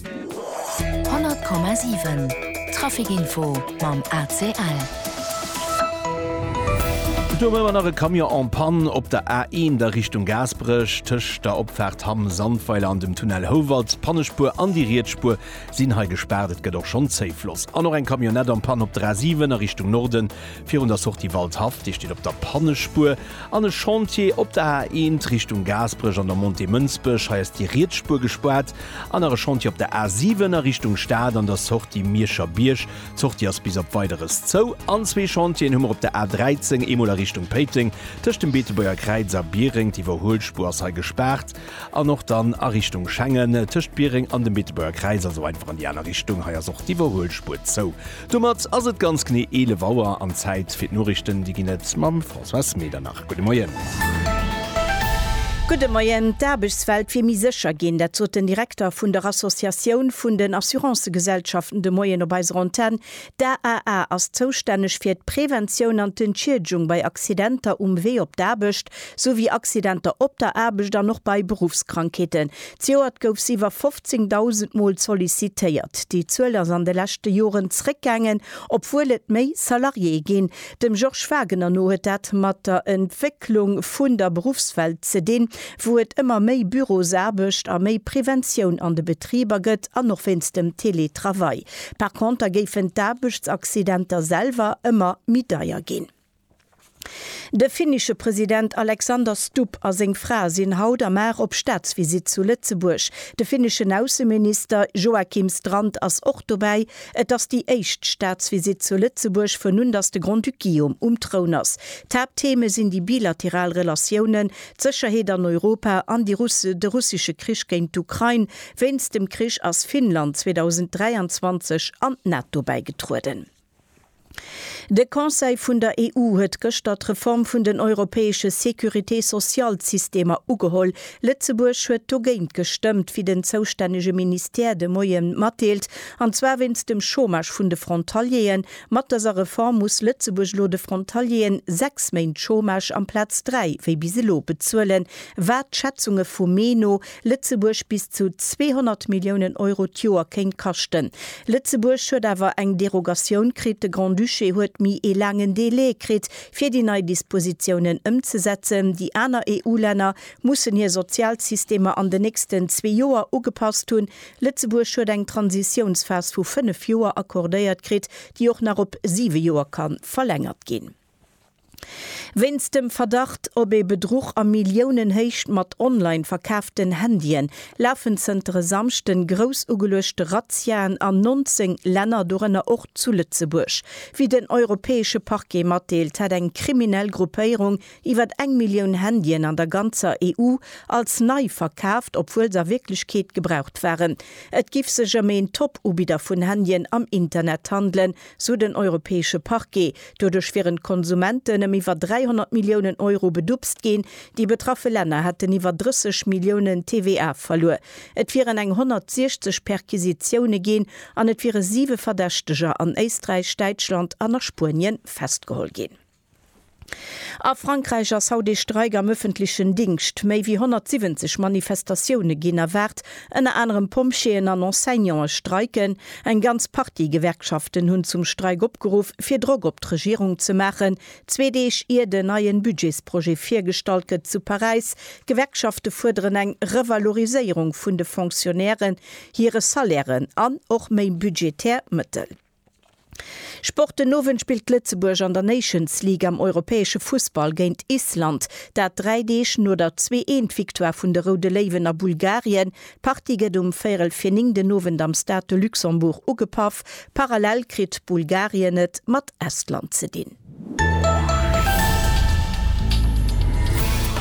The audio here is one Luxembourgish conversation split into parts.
100,7 Traficinfo mam ACL. Do war nach e Camion en panne op der A1 a Richtung Gaasperech. Tëscht der Opfaart Hamm Sandweiler an dem Tunnel Houwald, d'Pannespuer an déi riets Spuer sinn hei gespaart. Et gëtt och schonn Zéifloss. An och eng Camionnette en panne op der A7 a Richtung Norden, virun der Sortie Waldhaff. Déi steet op der Pannespuer. An e Chantier op der A1 Richtung Gaasperech an der Montée Mënsbech. Hei ass déi riets Spuer gespaart. An nach e Chantier op der A7 a Richtung Stad an der Sortie Mierscher Bierg. D'Sortie ass bis op Weideres zou. An zwee Chantieren hu mer op der A13, eemol a Richtung Péiteng tëscht dem Beetebuerger Kräiz a Biereng, d'Iwwerhuelspuer ass hei gespaart, an och dann a Richtung Schengen tëscht Biereng an dem Beetebuerger Kräiz, also einfach an déi aner Richtung, hei ass och d'Iwwerhuelspuer zou. Domat ass et ganz genee 11 Auer an Zäit fir d'Noriichten. Déi ginn et mam Françoise Medernach. Gudde Moien. Gudde Moien. D'Aarbechtswelt wier méi sécher ginn. Dat sot den Direkter vun der Associatioun vun den Assurancëgesellschaften de Moien op eiser Antenn. D'AAA ass zoustänneg fir d'Preventioun an d'Entschiedegung bei Accidenter um Wee op d'Aarbecht. sou wéi Accidenter op der Aarbecht an och bei Beruffskrankheeten. D'Joert gouf se iwwer 15.000 Mol sollicitéiert. Déi Zuel ass an de leschte Joren zréckgaangen, obwuel et méi Salariéë ginn. Dem Georges Wagener no huet dat mat der Entwécklung vun der Beruffswelt ze dinn, wou et ëmmer méi Bürosaarbecht a méi Preventioun an de Betriber gëtt an och wéinst dem Teletravail. Par conter géifen d'Aarbechtsaccidenter selwer ëmmer méi deier ginn. De finnische President Alexander Stubb a seng Fra sinn haut a mar op Staatsvisitt zu Lëtzebuerg. De finneschen Ausseminister Joakim Strand ass och dobäi. Et ass déi éischt Staatsvisitt zu Lëtzebuerg vun un datt de Grand-Duc Guillaume um Troun ass. D'Haapttheme sinn déi bilateral Relatiounen, d'Sécherheet an Europa an de russesche Krich géint d'Ukrain. Wéinst dem Krich ass Finnland 2023 an d'NATO bäigetrueden. De Conseil vun der EU huet gëschter d'Reform vun den europäesche Sécurité-sociale-Systemer ugeholl. Lëtzebuerg huet dogéint gestëmmt, wéi den zoustännege Ministère de Moien matdeelt, an zwar wéinst dem Chômage vun de Frontalieren. Mat dëser Reform muss Lëtzebuerg elo de Frontalieren sechs Méint Chômage amplaz dräi wéi bis elo bezuelen, wat Schätzunge vum Mee no Lëtzebuerg bis zu 200 Milliounen Euro d'Joer kéint kaschten. Lëtzebuerg huet awer eng Derogatioun kritt, de Grand-Duché huet méi ee laangen Delai kritt, fir déi nei Dispositiounen ëmzesetzen. Déi aner EU-Länner mussen hir Sozialsystemer an den nächsten zwee Joer ugepasst hunn. Lëtzebuerg huet eng Transitiounsphas vu fënnef Joer accordéiert kritt, déi och nach op siwe Joer ka verlängert ginn. Wéinst dem Verdacht op ee Bedruch a Milliounenhéicht mat online verkaaften Handyen lafen zënter e Samschde grouss ugeluechte Razziaen an 19 Länner, dorënner och zu Lëtzebuerg. Wéi den europäesche Parquet matdeelt, hätt eng kriminell Gruppéierung iwwer eng Millioun Handyen an der ganzer EU als nei verkaaft, obwuel se a Wierklechkeet gebraucht waren. Et giff sech ëm een Top-Ubidder vun Handyen am Internet handelen, sou den Europäesche Parquet. Doduerch wieren d'Konsumenten ëm iwwer 300 Milliounen Euro bedupst ginn. Déi betraffe Länner hätten iwwer 30 Milliounen TVA verluer. Et wieren eng 160 Perquisitioune ginn an et wiere siwe Verdächteger an Éisträich, Däitschland an a Spuenien festgeholl ginn. A Frankräich ass haut ee Streik am ëffentlechen Dingscht. Méi wéi 170 Manifestatioune ginn erwaart. Ënner anerem Pompjeeën an Enseignante streiken. Eng ganz Partie Gewerkschaften hunn zum Streik opgeruff, fir Drock op d'Regierung ze maachen. Zwee Deeg ier den neien Budgetsprojet virgestallt gëtt zu Paräis. D'Gewerkschafte fuerderen eng Revaloriséierung vun de Fonctionnairen hire Salairen an och méi budgetär Mëttel. Sport, Den Owend spillt Lëtzebuerg an der Nations League am europäesche Fussball géint Island. Dat dräi Deeg no der Zwee-Eent-Victoire vun de Roude Léiwen a Bulgarien. D'Partie gëtt um véierel fir néng den Owend am Stade de Luxembourg ugepaff. Parallel kritt Bulgarien et mat Estland ze dinn.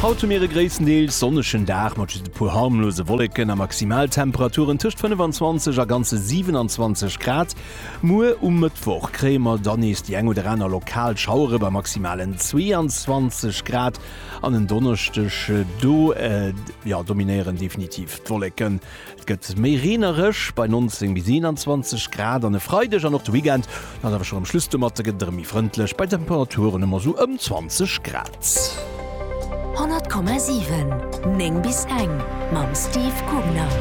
Haut hu mir e gréisstendeels sonnegen Dag mat just e puer harmlose Wolleken a Maximaltemperaturen tëscht 25 a ganze 27 Grad. Muer um Mëttwoch kréie mer dann nees déi eng oder aner lokal Schauere bei maximalen 22 Grad an en Donneschdeg do, jo, dominéieren definitiv d'Wolleken. Et gëtt méi reenereg, bei 19 bis 21 Grad an e Freideg an och de Weekend ass awer schonn am Schluss. Domatte gëtt et erëm méi frëndlech bei Temperaturen ëm esou ëm 20 Grad. 100,7 9 bis eng mam Steve Kugner.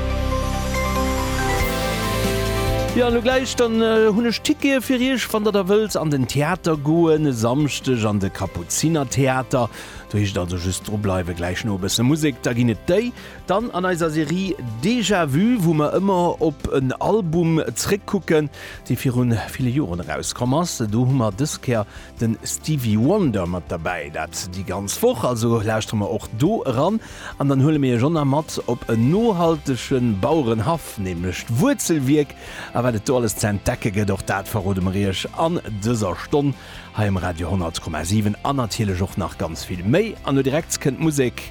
Jo an elo gläich dann hunn ech Tickete fir iech, wann der da wëllt an den Theater goen. E Samschdeg an de Kapuzinertheater. Do heescht et also just dru bleiwen, gläich no e bësse Musek, da ginn et déi. Dann an eiser Serie Déjà Vu, wou mer ëmmer op en Album zréck kucken, dee viru ville Joren erauskomm ass. Do hu mer dës Kéier de Stevie Wonder mat derbäi. Dat déi ganz Woch, also lauschtere mer och do eran. An dann huele mir Iech och nach mat op en nohaltege Bauerenhaff, nämlech d'Wuerzelwierk. A wat et do alles ze entdecke gëtt, och dat verrode mer Iech an dëser Stonn hei um Radio 100,7. An natierlech och nach ganz vill méi. An elo direkt kënnt d'Musek.